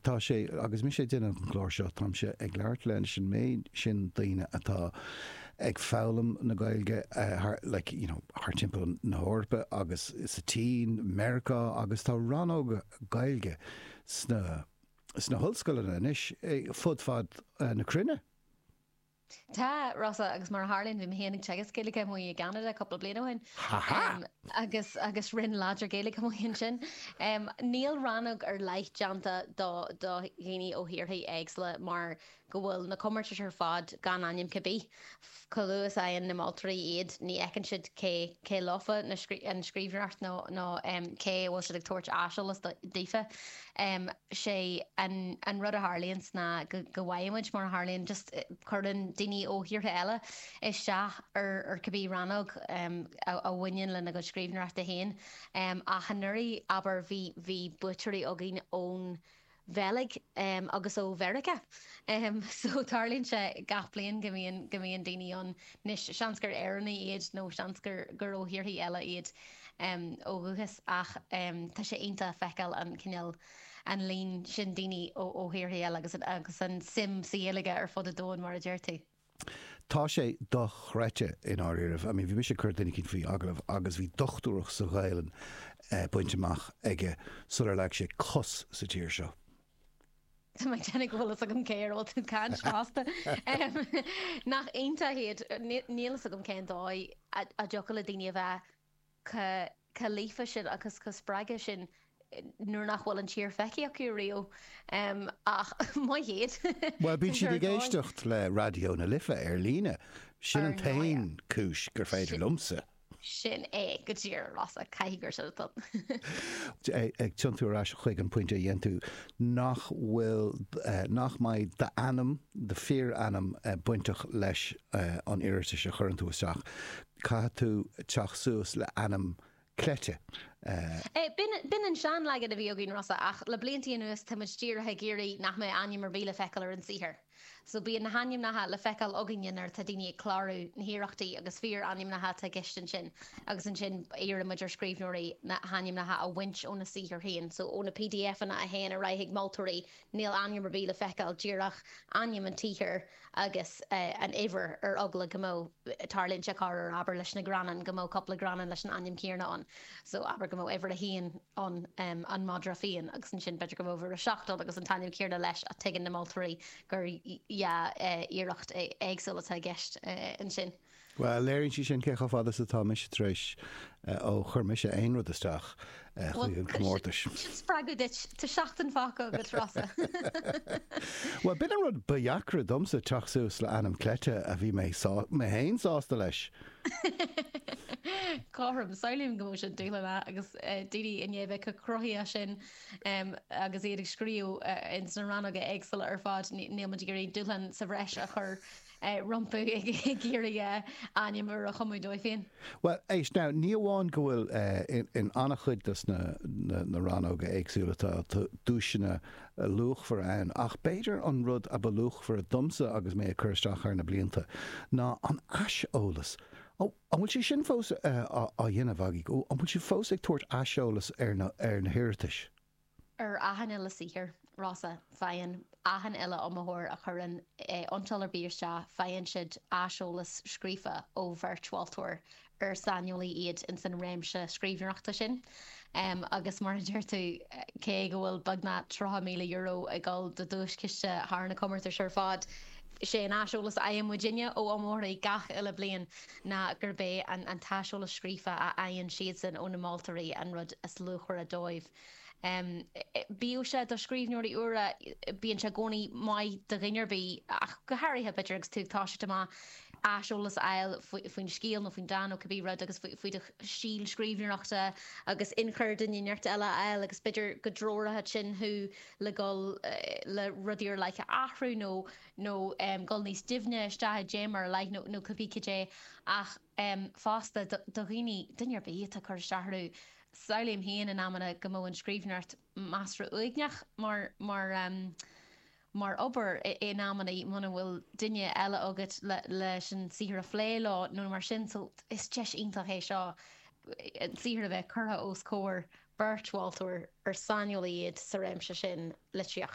Tá sé, agus mise ag déanamh an chláir seo, táimse ag labhairt leis an méid sin daoine atá ag foghlaim na Gaeilge thar, like, you know, thar timpeall na hEorpa agus sa tSín, Meiriceá, agus tá rannóga Gaeilge sna, sna hollscoileanna anois fud fad na cruinne. Tá, Rossa, agus mar a tharlaíonn bhí mé féin ag teagasc Gaeilge amuigh i gCeanada cúpla bliain ó shin. Ha ha! Agus agus roinn láidir Gaeilge amuigh ansin. Níl rannóg ar leith déanta do do dhaoine ó thíortha éagsúla mar go bhfuil na comórtais ar fad gan ainm cibé ar bith. Chomh luath is a fhaigheann na moltóirí iad ní fheiceann siad cé cé leofa an scríbhneoireacht nó nó cé a bhfuil siad ag tabhairt aiseolas daofa. em sé an an rud a tharlaíonns ná go go bhfaighimid mar a tharlaíonn just cuireann daoine ó thíortha eile isteach ar ar cibé rannóg em a a bhaineann lena gcuid scríbhneoireachta féin em ach anuraidh abair bhí bhí buaiteoirí againn ón Bheilg em agus ó Mheiriceá em so tarlaíonn sé gach bliain go mbíonn go mbíonn daoine ann Anois, seans gur Éireannaigh iad nó seans gur ó thíorthaí eile iad ó dhúchas ach tá sé iontach feiceáil an cineál, an líon sin daoine ó thíorthaí eile agus agus an suim sa Ghaeilge ar fud an domhain mar a deir tú. Tá sé dochreidte i ndáiríribh. I mean bhí mise ag cur duine eicínt faoi agallamh agus bhí dochtúireacht sa Ghaelainn bainte amach aige sular leag sé cos sa tír seo. Tá mé ag déanamh go bhfuil a fhios agam cé air a bhfuil tú ag caint fosta. Nach iontach iad. Níl a fhios agam cén dóigh a dtiocfadh le daoine a bheith chomh líofa sin agus chomh spreagtha sin nuair nach bhfuil an tír feicthe acu riamh. Ach maith iad. Bhuel, bíonn siad ag éisteacht le Raidió na Life ar líne. Sin an t-aon chúis gur féidir liomsa. Sin é go díreach, a Rossa, caithfidh gur sin atá ann. Ag tiontú ar ais chuig an phointe a dhein tú, nach bhfuil, nach mbeidh d'ainm, do fíorainm bainteach leis an iarratas a chuireann tú isteach. Caithfidh tú teacht suas le ainm cleite. B'in an seanleagan a bhí againn, Rossa, ach le bliantaí anuas tá muid díreach ag iarraidh nach mbeadh ainm ar bith le feiceáil ar an saothar. So bíonn na hainmneacha le feiceáil againne nuair atá daoine ag clárú na hiarrachtaí agus fíor ainmneacha atá i gceist ansin agus ansin iarrann muid ar scríbhneoirí na hainmneacha a bhaint óna saothar féin. So ó na PDFanna a théann ar aghaidh chuig moltóirí níl ainm ar bith le feiceáil, díreach ainm an tsaothair agus an uimhir ar eagla go mbeadh, tarlaíonn sé corruair, abair leis na gearrdhánta, go mbeadh cúpla gearrdhán leis an ainm céanna ann. So abair go mbeadh uimhir a haon, ann an madra fiáin agus ansin b'fheidir go mbeadh aiste ann agus an t-ainm céanna leis ach tuigeann na moltóirí gur dhá iarracht éagsúil atá i gceist ansin. Bhuel, léiríonn sé sin cé chomh fada is atá mise tar éis ó chuir mise aon rud isteach chuig an gcomórtas. Bhuel, sin spreagadh duit. Tá seachtain fágtha agat, Rossa. Bhuel, b'in an rud ba dheacra domsa, teacht suas le ainm cleite a bhí mé féin sásta leis. Cothrom. Samhlaím go mbeadh sé dúshlánach agus daoine i ndiaidh a bheith chomh cruthaitheach sin agus iad ag scríobh ins na rannóga éagsúla ar fad, níl muid ag iarraidh dúshlán sa bhreis a chur rompu ag iarraidh ainm úr a chumadh dóibh féin. Bhuel, éist now, ní amháin go bhfuil in an-chuid dos na rannóga éagsúla tá duaiseanna luachmhar ann, ach b'fhéidir an rud ab luachmhaire domsa agus mé ag cur isteach thar na blianta ná an aiseolas. Ó, an bhfuil sé sin fós á dhéanamh agaibh? Ó, an bhfuil sibh fós ag tabhairt aiseolas ar na hiarratais? Ar achan uile saothar, Rossa, faigheann achan uile iomaitheoir a chuireann iontráil ar bith isteach, faigheann siad aiseolas scríofa ó bheirt mholtóirí gur saineolaí iad ins an réimse scríbhneoireachta sin agus mar a deir tú, cé go bhfuil beagnach €30,000 i gciste de duaischiste thar na comórtais ar fad, is é an aiseolas a fhaigheann muidinne ó iomaitheoirí gach uile bliain ná gurb é an t-aiseolas scríofa a fhaigheann siadsan ó na moltóirí an rud is luachmhaire dóibh. Bíodh sé do scríbhneoirí úra, bíonn sé i gcónaí maith do dhuine ar bith, ach go háirithe, b'fhéidir, agus tú ag toiseacht amach, aiseolas a fháil faoin scéal nó faoin dán nó cibé rud agus faoi do stíl scríbhneoireachta agus inchur duine éinteacht eile a fháil agus b'fhéidir go dtreoródh sin thú le dhul le rudaí ar leith a athrú nó dhul níos doimhne isteach i dtéama ar leith nó cibé cad é ach em, fosta, do, do dhaoine, duine ar bith atá ag cur isteach orthu, samhlaím féin in amanna go mbeadh an scríbhneoireacht measartha uaigneach mar, mar em, mar obair i, in amannaí, muna bhfuil duine eile agat le, leis an saothar a phlé leo nó mar sin so is deis iontach é seo an saothar a bheith curtha os comhair beirt mholtóirí ar saineolaí iad sa réimse sin litríochta.